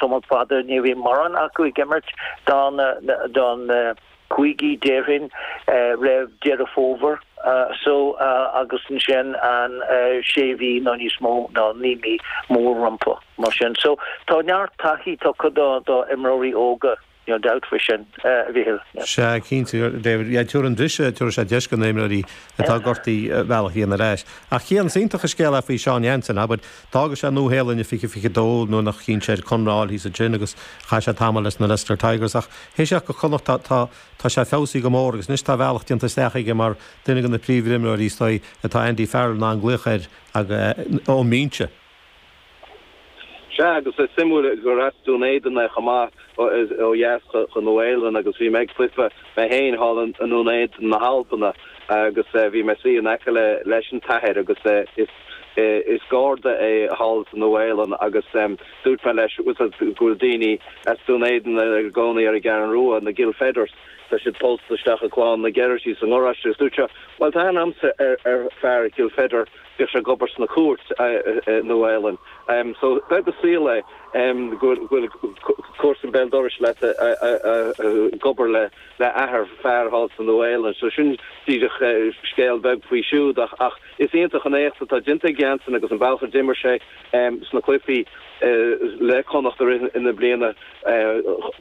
Tamall fada ní bhíonn mórán acu ag imirt do na cúigí déarfainn roimh Deireadh Fómhair so agus ansin an sé mhí nó níos mó nó naoi mí mór rompu mar sin so tá neart taithí tugtha do imreoirí óga. Níl dabht faoi sin, a Mhichíl. Sea, cinnte, a David. Yeah, tabharfaidh an briseadh, tabharfaidh sé deis do na himreoirí atá gortaithe a mbealach a dhéanamh ar ais. Ach yeah, is iontach an scéal é faoi Seán Jansen, abair. D'fhága sé an Nua-Shéalainn i 2022 nuair nach chinn sé air conradh a fháil thíos ansin agus chaith sé tamall leis na Leicester Tigers. Ach théis teacht go Connachta tá sé feabhsaithe go mór agus anois tá a bhealach déanta isteach aige mar duine de na príomhimreoirí is dóigh atá Andy Farrell in ann glaoch air ón mbinse. Sea, agus is suimiúil gur as Dún Éideann é chomh maith, ó dheas den Nua-Shéalainn, agus bhí mé ag cluiche mé féin thall i nDún Éideann na hAlbana agus bhí mé ag suí in aice leis an t-athair agus is Garda é thall sa Nua-Shéalainn agus dúirt mé leis go bhfuil daoine as Dún Éideann ina gcónaí ar an gCeathrú Rua, na Gilfedders, tá siad pósta isteach i gclann na Geraghty sa ngaráiste agus dúirt sé, bhuel, tá aithne agamsa ar fear Gilfedder. bhíodh sé ag obair sna cúirt i Nua Shéalainn so beag an saol é go bhfuil comharsain béal dorais leat ag obair le le athair fear thall sa Nua Shéalainn so sin díreach scéal beag faoi siúd ach ach is iontach an éacht atá déanta ag Jansen agus an bealach a d'imir sé sna cluifí le Connacht i rith na bliana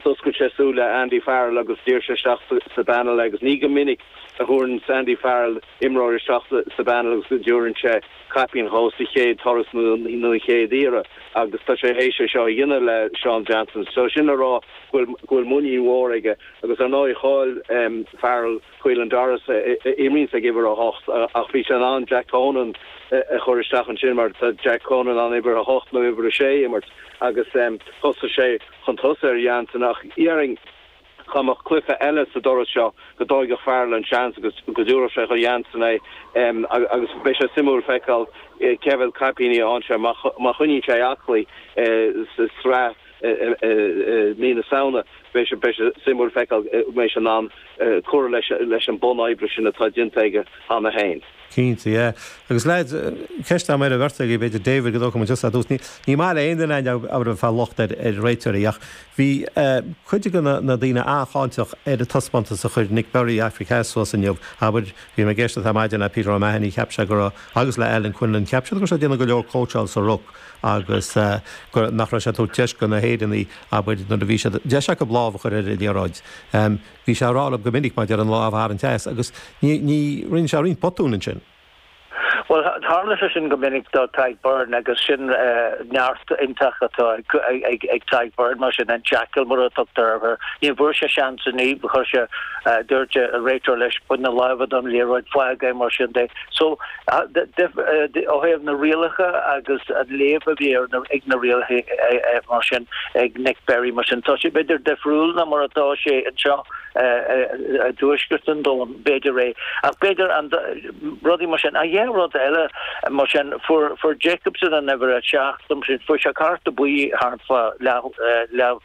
d'oscail sé súile Andy Farrell agus d'iarr sé isteach sa sa bpainéal é agus ní go minic a thabharann Andy Farrell imreoir isteach sa bpainéal agus go dtabharann sé caipín dhó sa chéad turas nó an chéad iarraidh agus tá sé théis é seo a dhéanamh le Seán Jansen so sin le rá go bhfuil muinín mhór aige agus ar ndóigh chaill Farrell Caelan Doris a imríonns ag uimhir a hocht ach bhí sé in ann Jack Conan a chur isteach ansin mar tá Jack Conan in ann uimhir a hocht nó uimhir a sé a imirt agus thosaigh sé chun tosaigh ar Jansen ach déarfainn Dá mbeadh cluiche eile sa turas seo go dtógfadh Farrell an seans agus go dtabharfadh sé chuig Jansen é agus beidh sé suimiúil feiceáil cé mhéad caipíní a fhaigheann sé má choinníonn sé é aclaí sa sraith i mí na Samhna. Beidh sé suimiúil feiceáil an mbeidh sé in ann cur leis an mbun oibre sin atá déanta aige cheana féin. Cinnte, yeah. Agus lads, ceist agam ar an bheirt agaibh, b'fhéidir David go dtógfaidh muid tusa ar dtús. Ní ní maith le aon duine gan dabht a bheith ag fáil locht ar ar réiteoirí ach bhí eh cuid de na na daoine an-cháinteach ar an taispeántas a chuir Nic Berry Aifric Theas suas inniu. Abair, bhí mé ag éisteacht ar maidin le Peter O'Mahony cheap sé go raibh, agus le Alan Quinlan, cheap siad go raibh sé ag déanamh go leor cóitseáil sa ruc agus eh go nach raibh sé ag tabhairt deis do na hÉireannaigh, abair nuair a bhí siad, deis acub lámh a chur ar an liathróid. Em. Bhí sé ag rá liom go minic maidir an lámh a tharraingt as agus rinne sé roinnt botúin ansin. Bhuel, tharla sé sin go minic do Tadhg Beirne agus sin neart iontach atá ag Tadhg Beirne mar sin, an Jackal mar a tugtar air. Ní bhfuair sé seans inné, chuir sé, dúirt an réiteoir leis, bain na lámha den liathróid, fág é, mar sin de. So, Ó thaobh na rialacha agus an léamh a bheadh ar na rialacha mar sin ag Nick Berry mar sin tá sé b'fhéidir difriúil ná mar atá sé anseo i dtuaisceart an domhain, b'fhéidir é ach b'fhéidir rudaí mar sin. An chéad rud eile mar sin fuair Jacobson an uimhir a seacht fuair sé cárta buí thart fá leath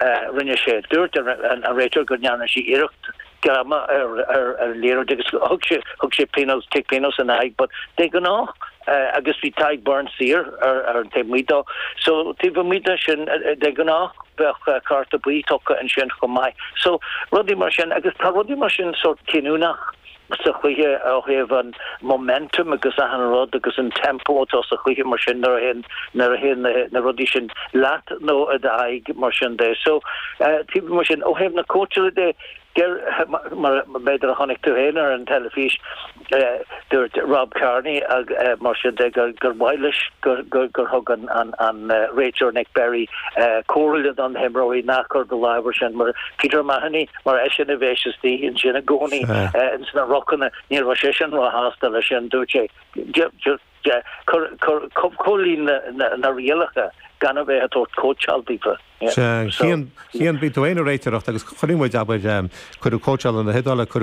a rinne sé. Dúirt an réiteoir go ndearna sé iarracht greama ar an liathróid agus thug sé pionós, cic pionós ina aghaidh but de ghnáth agus bhí Tadhg Beirne saor ar an taobh amuigh dó so taobh amuigh de sin de ghnáth bheadh cárta buí tugtha ansin chomh maith so rudaí mar sin agus tá rudaí mar sin sórt cinniúnach. sa chluiche ó thaobh an momentum agus achan rud agus an tempo atá sa chluiche mar sin nuair a théann nuair a théann na rudaí sin leat nó i d'aghaidh mar sin de so taobh mar sin ó thaobh na cóitseála de deir mar b'fhéidir a chonaic tú féin ar an teilifís dúirt Rob Kearney ag mar sin de gur gur mhaith leis gur gur gur thug an an an réiteoir Nick Berry comhairle do na himreoirí ná cuir do lámh ar sin ar Peter Mahony mar eisean a bíos istigh ansin i gcónaí sna rucanna. Ní raibh seisean róshásta leis sin, dúirt sé. Comhlíon na rialacha gan a bheith ag tabhairt cóitseáil daofa. Sea, Cian, bíonn tú ag réiteoireacht, agus chuirfidh muid, abair, cuireadh comórtas na hIodáile, cuireadh